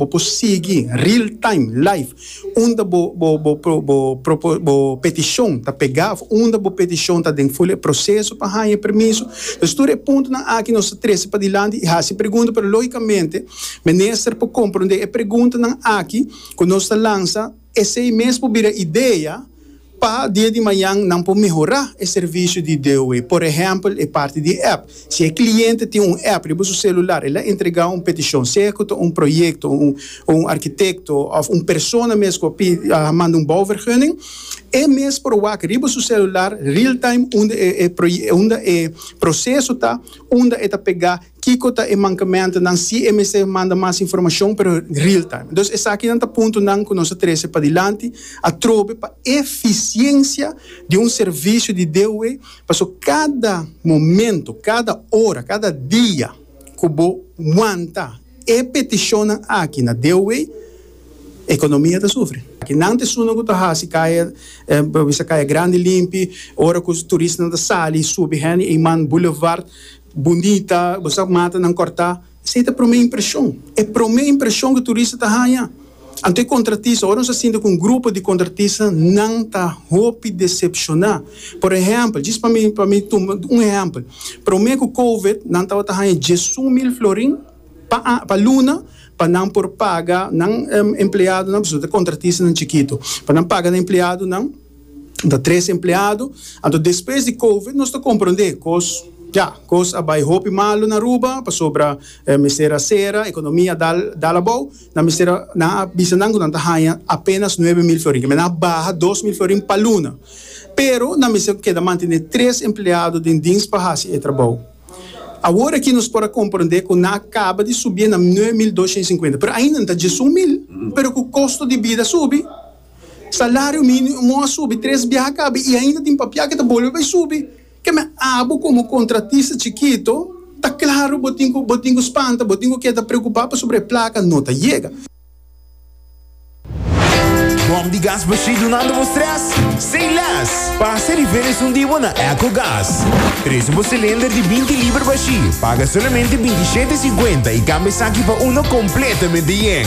Bo por sigui real time, live, unda bo bo bo propo bo peticion ta pega of unda bo peticion ta den fula e proceso pa haña e permiso. Pues tur e puntonan aki nos ta trece padilanti y haci pregunta pero logicamente Minister por comprende e preguntanan aki cu nos ta lansa. Esei mes por bira idea pa dia di mañan nan por mehorá e servisio di DOE. Por ehèmpel, e parti di app. Si e kliente tin un app riba su selular, el a entregá un petishon, sea ku ta un proyekto, o un arkitekto, òf un persona mes ku a manda un bouwvergunning. E mes por wak riba su selular, real-time, unda e proye, unda e proseso ta, unda e ta pegá. Kiko ta e mankementonan si e mester manda mas informashon pero real time? Entonces esakinan ta puntonan ku nos ta trese padilanti atrobe pa efisiensia di un servisio di DUW paso kada momento, kada ora, kada dia ku bo wanta e petishonnan aki na DUW ekonomia ta sufri. Nan ta esunnan ku ta hasi kaya pa bisa kaya grandi limpi, ora ku turistanan ta sali subi hende Iman Boulevard. Bundita, bo sa mata nan kòrtá. Esei ta promé impreshon. E promé impreshon ku turista ta haña. Anto e kontratista, ora nos a sinti ku un grupo di kontratista nan ta hopi desepshoná. Por ehèmpel, djis pa mi pa mi tuma un ehèmpel. Promé ku kowid nan tabata haña diesun mil florin pa a pa luna pa nan por paga nan empleadonan, pasobra ta kontratistanan chikitu, pa nan paga nan empleadonan. N ta tres empleado, anto despues di covid nos ta compronde cos, ya, cos a bay hopi malo na Aruba pasobra e mester a cera, economia a dal dal abao, nan mester a, nan a bisa nan cu nan ta haya apenas nuebe mil florin, esaki nan a baha dos mil florin pa luna, pero nan mester keda mantene tres empleado den dienst pa haci e trabao. Awor aki nos por a compronde cu nan a caba di subi e na nuebe mil doscientocincuenta, pero ainda nan ta diesun mil, pero cu costo di bida subi, Salario minimo a subi tres biaha kabi i ainda tin papia ke ta bolbe bai subi. Keme abo komo kontratista chikito ta klaru bo tin ku bo tin ku spanta, bo tin ku keda preokupá pasobra e plaka no ta yega. Bòm di gas bashí dunando bo strès? Sin lès! Pasa di felis un di bo na Ecogas. Presu bo silinder di binti liber bashí, paga solamente binti shete i sinkuenta i kambia esaki pa uno kompletamente yen.